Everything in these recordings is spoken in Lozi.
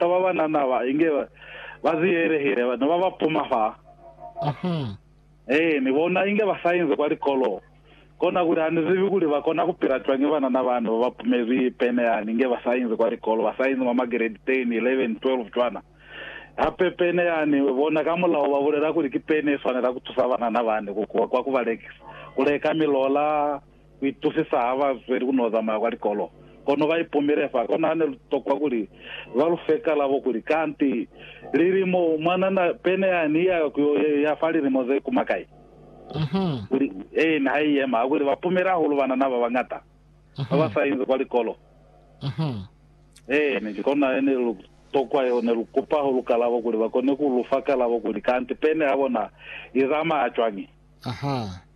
Ka ba ba na naba, inge ba ziyelehile, ba ne ba ba puma fa. Ahaa. Ee, ni bona inge ba sa inzi kwa likolo. Kona kuli ha ni zibi kuli ba kona ku pila cwañi banana ba ne ba ba pumezwi pene yani, inge ba sa inzi kwa likolo, ba sa inzi mwa magredi 10, 11, 12 cwana. Hape pene yani, bona ka mulaho ba bulela kuli ki pene ye swanela ku tusa banana bani ku kuha kwa ku ba lekisa, ku leka milola, ku itusisa ha ba zweli ku n'o zamaya kwa likolo, kono ba ipumile fa. Kona ha ne lu tokwa kuli ba lu fe kalabo kuli, Kanti lilimo mwanana pene ya ni ya ku yo ya fa lilimo ze kuma kai? Kuli, Ee, ne ha i yema. Hakuli, ba pumile hahulu banana ba bañata ba ba sa inzi kwa likolo. Eeni, ki kona he ne lu tokwa yeo. Ne lu kupa ha lu kalabo kuli ba kone ku lu fa kalabo kuli, Kanti pene ya bona i zamaya cwañi?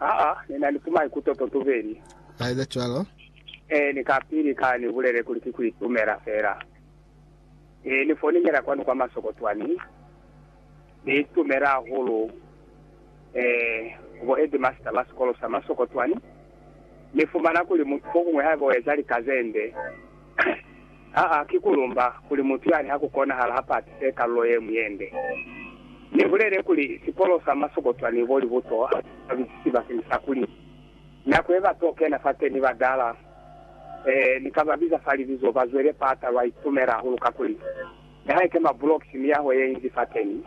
Aa, ni na ni ku maikuto to tubeli. Ka eza cwalo. Ee, ni kapili ka ni bulele kuli ki ku itumela fela. Ee, ni foninela kwanu kwa masoko twani. Ni itumela hahulu, ee, ku bo headmaster ba sikolo sa masoko twani. Ni fumana kuli mutu fokuñwi haiba u eza lika zende, Aa, ki ku lumba kuli mutu yani ha ku konahala ha patise kalulo ye ñwi ye nde. Ni bulele kuli, sikolo sa masokotwa ni bo libuto ha si sa bisisi bakeng sa kuli, nako ye ba to kena fateni ba dala, ee, ni ka ba biza fa libizo, ba zwele pata, lwa itumela hahulu kakuli, ni ha ike mabulokisi, miyaho ye inzi fateni,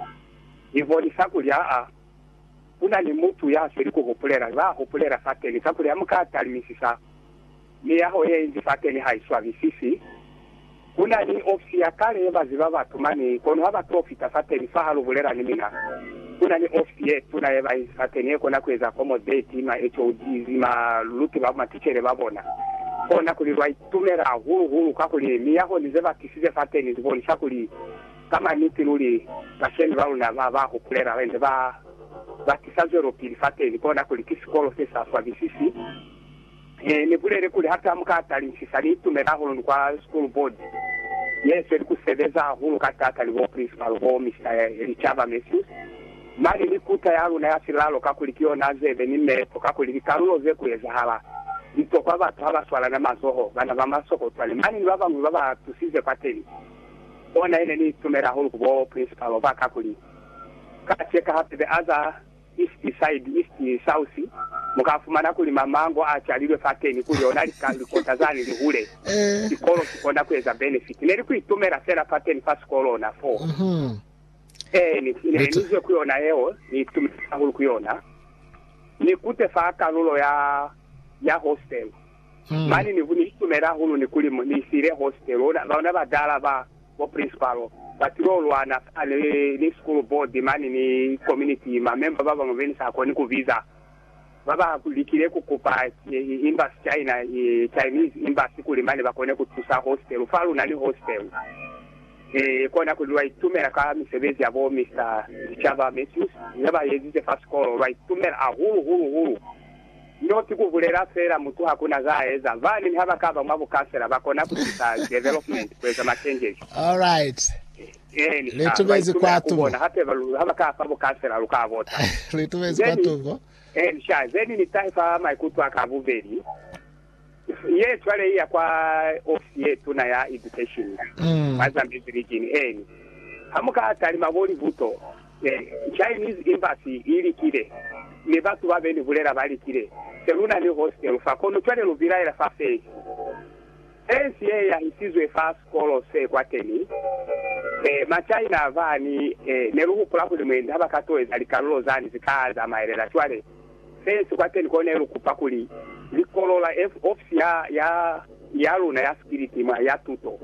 i bonisa kuli, aa, ku na ni mutu ya sweli ku hupulela, ba hupulela fateni, kakuli ha mu ka talimisisa. Miyaho ye inzi fateni ha i swabisisi. Ku na ni ofisi ya kale ye ba ziba batu mane, kono ha ba to fita fateni fa ha lu bulela ni mina. Ku na ni ofisi ye tuna ye ba inzi fateni ye kona ku eza accommodate ma HODs, ma luti ba maticele ba bona. Kona kuli lwa itumela hahulu hulu kakuli miyaho ni ze ba tisize fateni zi bonisa kuli ka maniti luli bashemi ba luna ba ba hupulela ba inze ba ba tisa zwelopili fateni, kona kuli ki sikolo se sa swabisisi. Ne ni bulele kuli hape ha mu ka tali nsisa, ni itumela hahulu ni kwa School Board ye sweli ku sebeza hahulu ka taata ni bo Principal bo Mister Licaba Mathews mane ni kuta ya luna ya silalo kakuli ki yona zebe ni meepo kakuli likalulo ze ku ezahala litokwa batu ha ba swalana mazoho, bana ba masokotwane mane ni ba bañwi ba ba tusize kwateni. Ona ye ne ni itumela hahulu ku bo Principal ba kakuli ka cheka hape be aza East side, east, south, muka fumana kuli mamango a calilwe fateni kuli ona lika, likota zani lihule. Sikolo sikona kueza benefit. Neli kuitumela fela fateni fa sikolo ona foo. Eehe, ni, ne, nizwe ku yona yeo, ni itumela hahulu ku yona. Ni kute fa kalulo ya, ya hostel. Mane ni, ni itumela hahulu ni kuli ni siile hostel. Ona, ona badala ba. Bo principalo, ba til'o lwana fa ni, ni school board mane ni community. Ma member ba bañwi be ni sa koni ku biza, ba ba likile ku kupa Embassy China, Chinese Embassy kuli mane ba kone ku tusa hostel. Fa lu na ni hostel, e, kona kuli lwa itumela ka misebezi ya bo Mister Sicaba Mathews ye ba ezize fa sikolo. Lwa itumela ahulu, hulu, hulu. No si ku bulela fela mutu ha ku na za a eza. Baaneni ha ba ka ba mwa bukasela, ba kona ku tusa development ku eza makengezo. Then, ha ba itume ha ku bona hape ba lu, ha ba ka fa bukasela, lu ka bota. Then, then ni tahe fa maikuto a ka a bubeli. Ye cwale iya kwa ofisi ye tuna ya education mwa Zambezi region eni. Ha muka talima bo libuto, Chinese embassy i likile, mi batu ba beni bulela ba likile. Se lu na ni hostel fa, kono cwale lu bilaela fa fensi. Fensi ye yahisizwe fa sikolo se kwateni. Ma China bani ne lu hupula kuli mwendi ha ba ka toeza likalulo zani zi ka zamaelela cwale. Fence kwateni kone lu kupa kuli li kolola ofisi ya ya ya luna ya sikiliti mwa ya tuto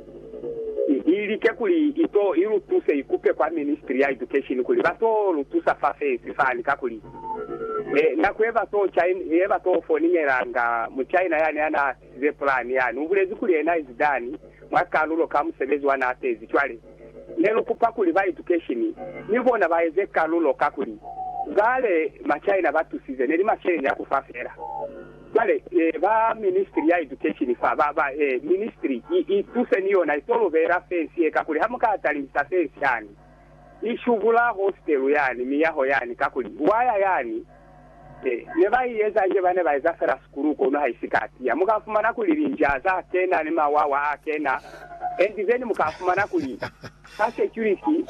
i i like kuli i to i lu tuse i kupe kwa ministry ya education kuli ba to lu tusa fa fence fani kakuli e nako ye ba to chain ye ba to foningelanga mu China yani ya na ze pulani yani. Ubulezi kuli yena izi done mwa kalulo ka musebezi wa na pezi. Cwale ne lu kupa kuli ba education ni bona ba eze kalulo kakuli bale ma China ba tusize neli masheleni ya kufa fela. Cwale eh ba ministry ya education fa ba ba eh ministry i i tuse ni yona ito lu beela fence ye kakuli ha muka talihisa fence yani I shubula hostelu yani, miyaho yani, kakuli waya yani he. Ne ba i eza nje, ba ne ba eza fela sikulu kono ha isi ka tiya. Mu ka fumana kuli linja za kena ni mawawa a kena, and then mu ka fumana kuli ka security,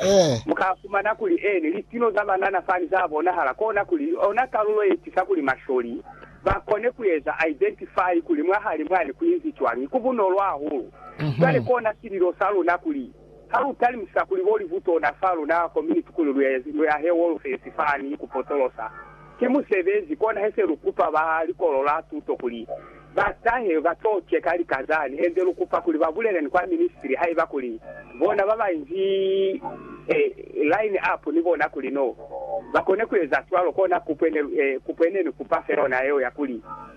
mu ka fumana kuli eni, litino za banana fani za bonahala. Kona kuli ona kalulo ye tisa kuli masholi ba kone ku eza identify kuli mwahali mwani ku inzi cwañi. Ku bunolo hahulu. Cwale kona sililo sa luna kuli. Ha lu talimisa kuli bo livutona fa luna ko mi ni tukuli lu yahe wolofesi fani ku potolosa, ki musebezi kona he se lu kupa ba likolo la tuto kuli ba tahe ba to ceka lika zani hende lu kupa kuli ba bulele ni kwa ministri haiba kuli bona ba ba inzi e line up ni bona kuli no ba kone ku eza cwalo kona kupwe ne kupwe ne ni kupa fe yona yeo ya kuli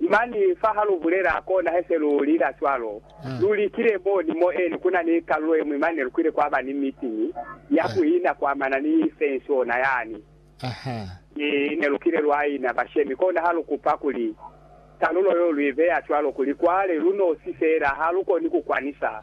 Mani fa ha lu bulela, kona he se lu lila cwalo. Lu likile mo ni mo eli ku na ni kalulo ye ñwi mane lu kwile kwa ba ni mitiñi ya ku ina ku amana ni fenshona yani. Mi ne lu kile lwa ina bashemi, kona ha lu kupa kuli kalulo yo lu i beya cwalo kuli kwale lu nosi fela ha lu koni ku kwanisa.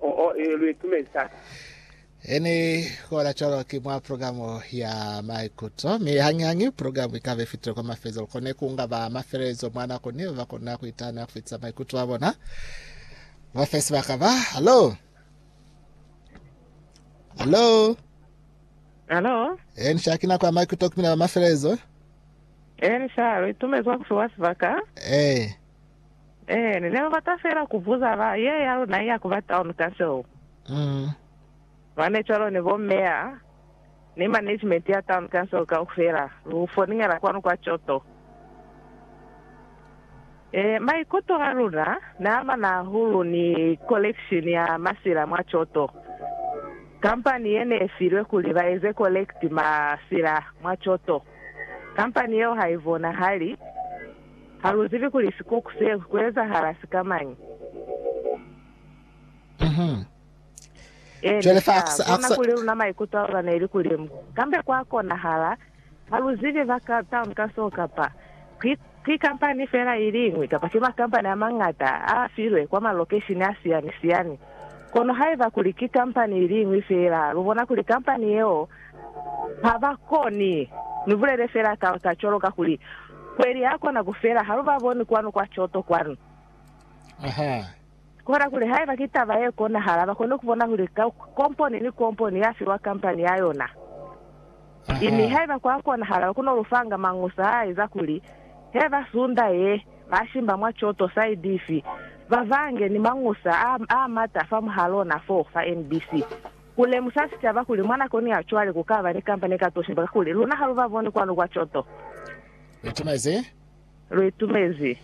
Oh, oh, ee, lu itumezi taata. Ini kola cwalo ki mwa program ya maikuto, mi hañi-hañi program ikaba ifitile kwa mafezo. Lukone kunga ba mafelelezo mwa nako niyo bakona kuitana kufitisa maikuto a bona. Ba fe sibaka ba. Hallo? Hallo? Halo? E, nisha kina kwa maikuto kumina ba mafelelezo. Eh, nishalo, itumezi wa kufiwa sibaka. E, Ee, ne ni bata fela ku buza ba ye ya luna iya ku ba town ka seo. Mm. Mane cwalo ni bo meya ni management ya town council kaufela, lu foningela kwanu kwa Choto. Ee, maikuto a luna ne a mana hahulu ni collection ya masila mwa Choto. Company ye ne filwe kuli ba eze collect masila mwa Choto, company yeo ha i bonahali. Ha lu zibi kuli sikuku se ku ezahala sikamañi. Ene sa bona kuli luna maikuto a luna neli kulimu. Kambe kwa konahala, ha lu zibi ba ka town ka so kapa ki, ki kampani fela iliñwi kapa ki makampani amañata a filwe kwa malokeshini a siyani-siyani. Kono haiba kuli ki kampani iliñwi fela, lu bona kuli kampani yeo Ha ba koni. Ni bulele fela ka ta cwalo kakuli kweli ya kona ku fela. Ha lu ba boni kwanu kwa coto kwanu. Ahaa. Kona kuli haiba ki taba ye konahala, ba kone ku bona kuli komponi ni komponi ya fiwa kampani ya yona. Ahaa. Mi haiba kwa konahala, ku no lu fanga mañusa a eza kuli he ba sunda ye, ba shimba mwa coto saidi ifi, ba bange ni mañusa a, a mata fa mwahalona fo, fa NBC. Ku lemusa sicaba kuli mwa nakoni ya cwale ku ka ba ni kampani ka tosi ba kuli luna ha lu ba boni kwanu kwa coto. Lu itumezi? Lu itumezi.